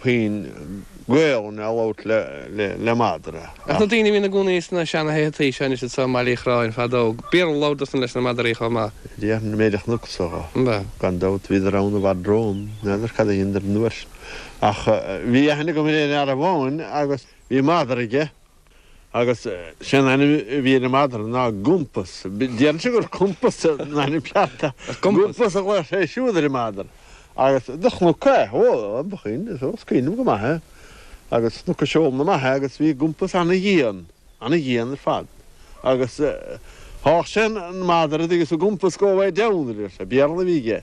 puinn gaol ná labhairt le madra. Ach na daoine a bhíonn ina gcónaí sna seana-thithe tuí seo anois anso i mBaile Uí Chróin fadó, bhí ana-labhairt acusan leis na madraí chomh maith. Meiriceánaigh a thugadh orthu. Gan dabht, bhíodar ann i bhfad romham. N'fheadar cad a dheineadar. Ach bhí aithne agam ar aon fhear amháin agus bhí madra aige. Agus sé'n ainm a bhí ar an madra ná Gumpas. Déarfainnse gur Cumpas an ainm ceart. Gumpas a ghlaodh sé siúd ar an madra. Agus do chnuc é. Ó, ba shin, is os coinne go maith é. Agus chnuc a seol na maith é agus bhí Gumpas an-dhian, an-dhian ar fad. Agus sháith sé an madra agus do bhí Gumpas go way down, a deir sé. Béarla a bhí aige.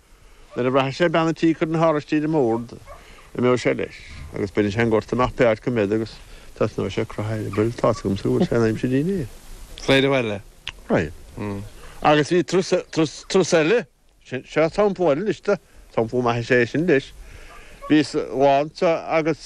Nuair a bhraithfeadh sé bean a' tí ag cur na n-áraistí ar an mbord, d'imeodh sé leis, agus bheadh sé sa ghort amach pé áit go mbeinn, agus thosnódh sé a' croitheadh a eireabaill, tá's agamsa go bhfuil sé in aimsir dínnéir. Saill eile? Aye. Agus bhí trus, trus, trus eile, sin, seo sampla eile anois de, sampla maith is ea é sin leis, bhíos lá anseo agus.